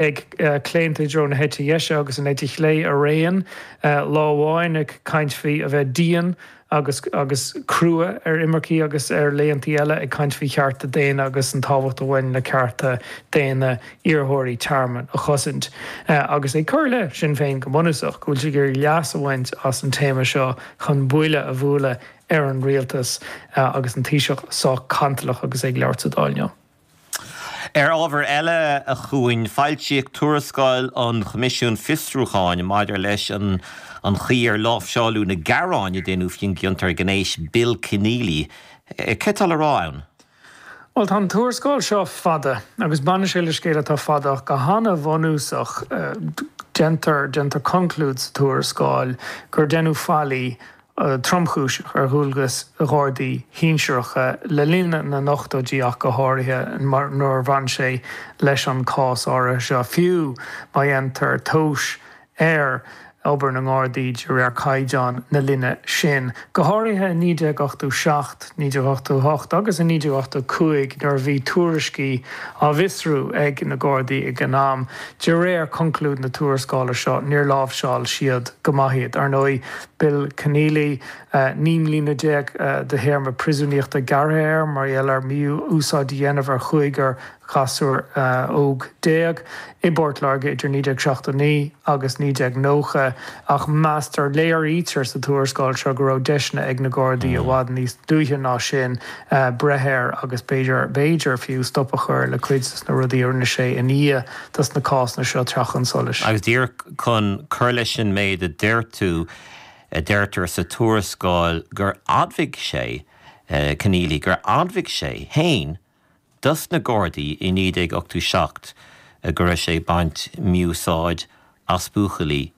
ag claonta i dtreo na heite dheise agus an eite chlé araon, lá amháin ag caint faoi a bheith dian agus crua ar imircigh agus ar laethantaí eile ag caint faoi chearta daonna agus an tábhacht a bhain le cearta daonna iarrthóirí tearmainn a chosaint agus ag cur i leith Sinn Féin go bunúsach, go bhfuil siad ag iarraidh leas a bhaint as an téama seo chun buille a bhualadh ar an rialtas agus an Taoiseach sách cantalach agus é ag labhairt sa Dáil inniu. Ar ábhar eile a Chuain, foilsíodh tuarascáil an Choimisiúin Fiosrúcháin maidir leis an chaoi ar láimhseáladh na gearáin a deineadh faoin gciontóir gnéis Bill Kenneally. Céard atá á rá ann? Bhuel, tá an tuarascáil seo fada agus baineann sé le scéal atá fada ach go han-bhunúsach. Déantar, déantar conclúid sa tuarascáil gur deineadh faillí tromchúiseach ar dhualgas ag Gardaí sinsearacha le linn na n-ochtóidí ach go háirithe nuair a bhain sé leis an chás áirithe seo, fiú má dhéantar tomhas ar obair na nGardaí de réir caighdeáin na linne sin, go háirithe i 1987, 1988 agus i 1985 nuair a bhí tuairiscí á bhfiosrú ag na Gardaí ag an am, de réir chonclúid na tuarascála seo, níor láimhseáil siad go maith iad. Ar ndóigh. Bill Kenneally, naoi mbliana déag de théarma priosúnaíochta gearrtha air mar gheall ar mhí-úsáid a dhéanamh ar chúigear gasúr óg déag i bPort Láirge idir 1979 agus 1990, ach meastar, léirítear sa tuarascáil seo go raibh deiseanna ag na Gardaí i bhfad níos luaithe ná sin breith air agus b'fhéidir, b'fhéidir fiú stop a chur le cuid de na rudaí a rinne sé i ndiaidh dos na cásanna seo teacht chun solais. Agus díreach chun cur leis an méid a deir tú, deirtear sa tuarascáil gur admhaigh sé, Kenneally, gur admhaigh sé fhéin dos na Gardaí i 1987 go raibh sé ag baint mí-úsáid as buachaillí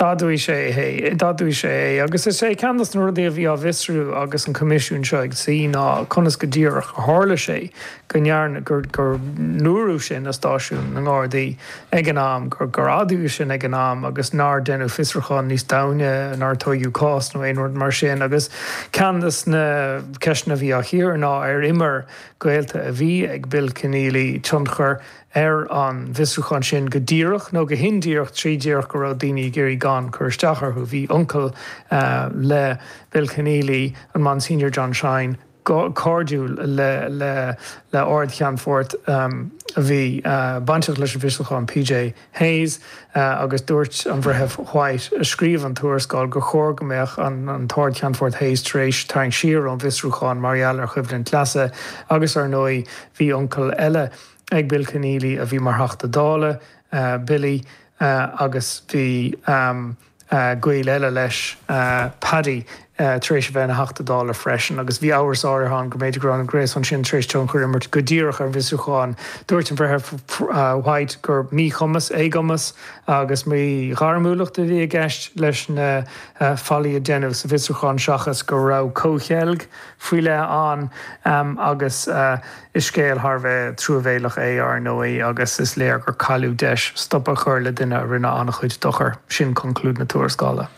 D'admhaigh sé é. D'admhaigh sé é. Agus is é ceann dos na rudaí a bhí á bhfiosrú agus an Coimisiún seo ag suí ná conas go díreach a tharla sé go ndearna, gur, gur ndúradh sin i stáisiún na nGardaí ag an am, gur, gur admhaíodh sin ag an am agus nár deineadh fiosrúchán níos domhaine, nár tóigeadh cás nó aon rud mar sin. Agus ceann dos na ceisteanna a bhí á gcíoradh ná ar imir gaolta a bhí ag Bill Kenneally tionchar ar an bhfiosrúchán sin go díreach nó go hindíreach trí díreach go raibh daoine ag iarraidh gan cur isteach orthu. Bhí uncail le Bill Kenneally, an Monsignor John Shine, cairdiúil le Ard-Cheannfort a bhí bainteach leis an bhfiosrúchán, P.J. Hayes, agus dúirt an Breitheamh White, a scríobh an tuarascáil, gur chóir go mbeadh an tArd-Cheannfort Hayes tar éis tarraingt siar ón bhfiosrúchán mar gheall ar choimhlint leasa agus, ar ndóigh, bhí uncail eile. ag Bill Kenneally a bhí mar Theachta Dála, Billy, agus bhí gaol eile leis, Paddy, tar éis a bheith ina Theachta Dála freisin agus bhí amhras áirithe ann go mb'fhéidir go raibh an gréasán sin tar éis tionchar a imirt go díreach ar an bhfiosrúchán. Dúirt an Breitheamh White gur míchumas, éagumas agus míghairmiúlacht a bhí i gceist leis na faillí a deineadh sa bhfiosrúchán seachas go raibh comhcheilg faoi leith ann agus, Is scéal thar a bheith truamhéileach é, ár ndóigh, agus is léir gur cailleadh deis stop a chur le duine a rinne an-chuid dochair. Sin conclúid na tuarascála.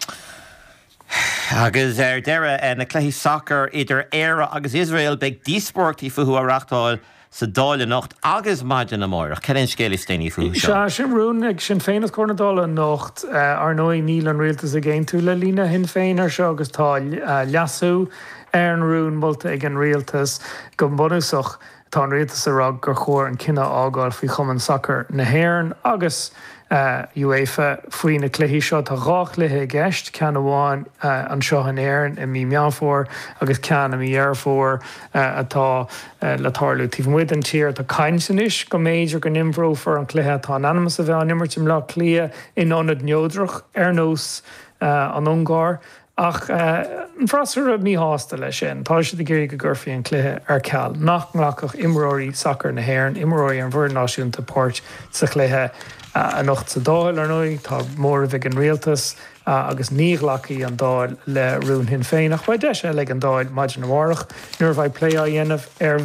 Agus ar deireadh, na cluichí sacair idir Éire agus Iosrael, beidh díospóireachtaí fúthu á reáchtáil sa Dáil anocht agus maidin amárach. Cad é an scéal is déanaí fúthu seo? Sea, sin rún ag Sinn Féin os comhair na Dála anocht. Ar ndóigh, níl an rialtas ag aontú le líne Shinn Féin ar seo agus tá leasú, Ar an rún molta ag an Rialtas, go bunúsach tá an Rialtas ag rá gur chóir an cinneadh a fhágáil faoi Chumann Sacair na hÉireann agus UEFA faoi na cluichí seo. Tá dhá chluiche i gceist, ceann amháin anseo in Éirinn i mí Meán Fómhair agus ceann i mí Dheireadh Fómhair atá le tarlú taobh amuigh den tír. Tá caint anois go mb'fhéidir go n-imreofar an cluiche atá in ainm is a bheith á n-imirt i mBleá Cliath in ionad neodrach ar nós an Ungáir. Ach tá an freasúra míshásta leis sin. Tá siad ag iarraidh go gcuirfí an cluiche ar ceal, nach nglacfadh imreoirí sacair na hÉireann, imreoirí an bhfoireann náisiúnta páirt sa chluiche. Anocht sa Dáil, ar ndóigh, tá móramh ag an rialtas agus ní ghlacfaidh an Dáil le rún Shinn Féin. Ach beidh deis eile ag an Dáil maidin amárach nuair a bheidh plé á dhéanamh ar.